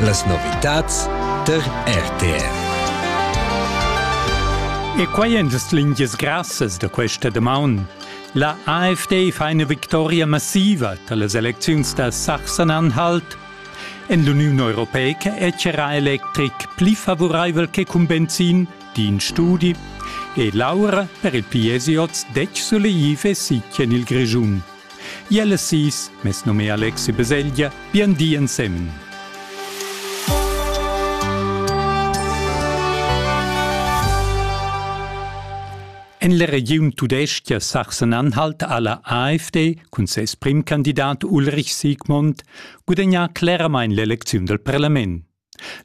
Las novitads tar RTR. E quai èn las lingias grassas da questa damaun. La AfD fa ina victoria massiva da las elecziuns da Sachsen-Anhalt. En l'Uniun Europeica è charra electric pli favuraivel che cun benzin, di in studi. E l'aura per il PSJ detg suleiv e sitg en il Grischun. Iel e sis, mes nome Alexi Beseglia, bien di ensemen. En la regiun tudestga Sachsen-Anhalt ha la AfD cun ses primcandidat Ulrich Siegmund gudagnà cleramain l'elecziun dal parlament.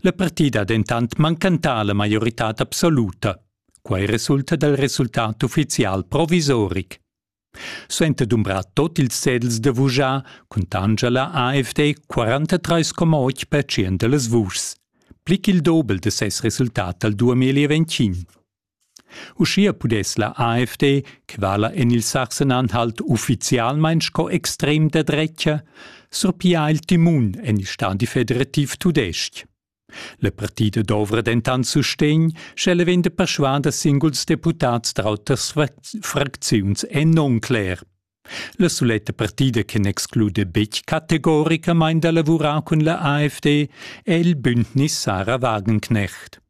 La partida ha dentant mancantà la maioritad absoluta. Quai resulta dal resultat uffizial provisoric. Suenter dumbrar tot ils cedels da vuschar cuntanscha la AFD 43,8% da las vuschs, pli ch'il dobel da ses resultat dal 2025. Uschia pudess la AFD, che vala en il Sachsen-Anhalt uffizialmain sco extrem da dretga, surpiar il timun en il stadi federativ tudestg. La partida dovra dentant sustegn, sch'ella vegn da perschuader da singuls deputads da auters fracziuns è non cler. La suletta partida che n'exclude betg categoricamain da lavurar cun la AfD è il Bündnis Sarah Wagenknecht.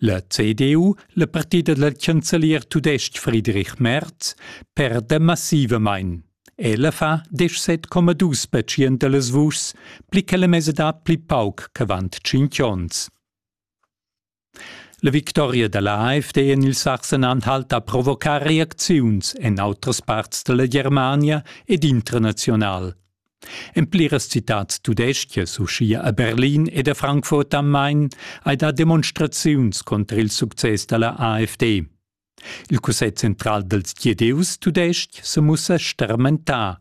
La CDU, la partida dal chancelier tudestg Friedrich Merz, perda massivamain. Ella fa 17,2 percent da las vuschs, pli che la mesadad pli pauc ch'avant tschintg onns. La victoria da la AfD en il Sachsen-Anhalt ha provocà reacziuns en autras parts da la Germania ed internazional. En pliras citads tudeschias, uschia a Berlin ed a Frankfurt am Main, hai dà demonstraziuns cunter il success da la AfD. Il Cussegl central dals Gidieus tudestg se mussa stermentà.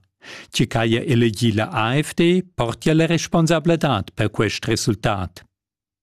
Tgi ch'haja elegì la AfD portia la responsabladad per quest resultat.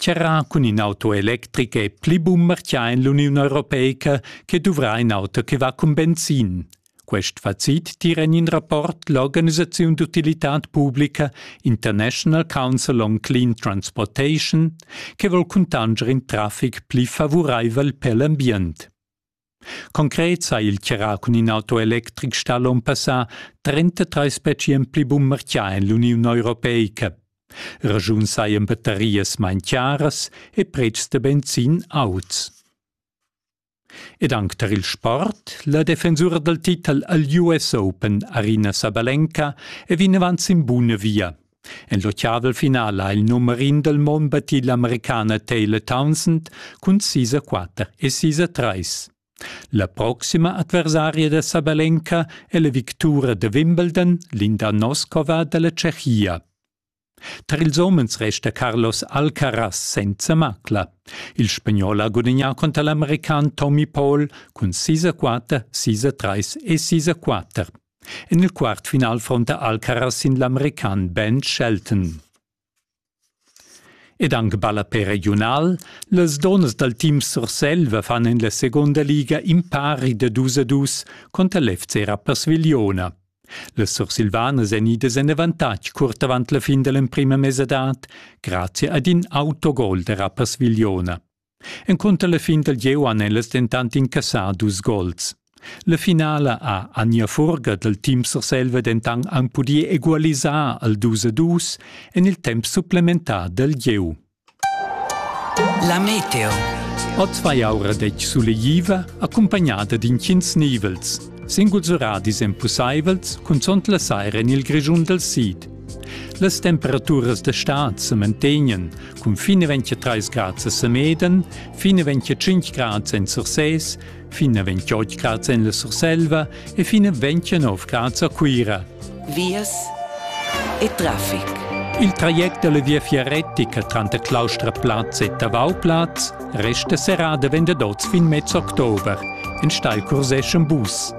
Charrà cun in auto electric è pli bun martgà en l'Uniun europeica che duvrà in auto che va cun benzin. Quest facit tira en in rapport l'organisaziun d'utilitad publica International Council on Clean Transportation che vol cuntanscher in traffic pli favuraivel per l'ambient. Concret sa il tgerà cun in auto electric stà l'on passà 33 specien pli bun marchià en l'Uniun Europeica. Ragiun sajan battarias main chiaras e pretschs da benzin auts. Ed anc tar il sport, la defensura dal titel al US Open Arina Sabalenka è vinavant sin buna via. En l'ottavel final ha il numer in dal mond battì l'Americana Taylor Townsend cun sis a quatter e sis a trais. La proxima adversaria da Sabalenka è la victura da Wimbledon, Linda Noskova da la Tschechia. Tar ils homens resta Carlos Alcaraz senza macla. Il spagnol ha gudagnà contro l'american Tommy Paul cun 6 a 4, 6 a 3 e 6 a 4. En il quart final fronta Alcaraz sin l'american Ben Shelton. Ed anc balla per regiunal, las donnas dal team Surselva fan en la seconda liga impari da dus a dus conter l'FC Rapperswil-Jona. Les sursilvanas èn idas en avantatg curt avant la fin da l'emprima mesadad grazie ad in autogol da Rapperswil-Jona. Encunter la fin dal gieu han ellas dentant incassà dus gols. La finala ha Anja Furger dal team Surselva dentant anc pudì egualisar al 2 a 2 en il temp supplementar dal gieu. La meteo. Oz vai aura detg sulegliva, accompagnada d'intgins nivels. Singuls oradis èn pussaivels, cunzunt la saira en il Grischun dal sid. Las temperaturas da stad se mantegnen cun fine 23 grad a Semeden, fine 25 grad en Sursès, fine 28 grad en la Surselva e fine 29 grad a Cuira. Vias e traffic. Il traject della via fiaretica tranter Claustraplatz e Tavauplatz resta serrada vende dots fin mezz october, en steil cursesce un bus.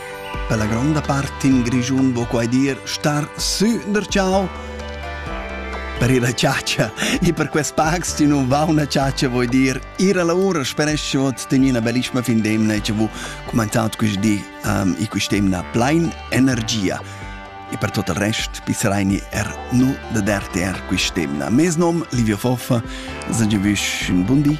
Per la gronda part in Grischun vo quai dir star sü der ciao. Per ir a chatscha e per quest pacs ti non va una chatscha vuoi dir ir alla ora speresce ot ten ina bellissima fin d'emna e vu commentat quest di um, e quest'emna plein energia e per tot il rest pissereini er nu da der ter quest'emna mes nom Livio Foffa, sage vush un buon di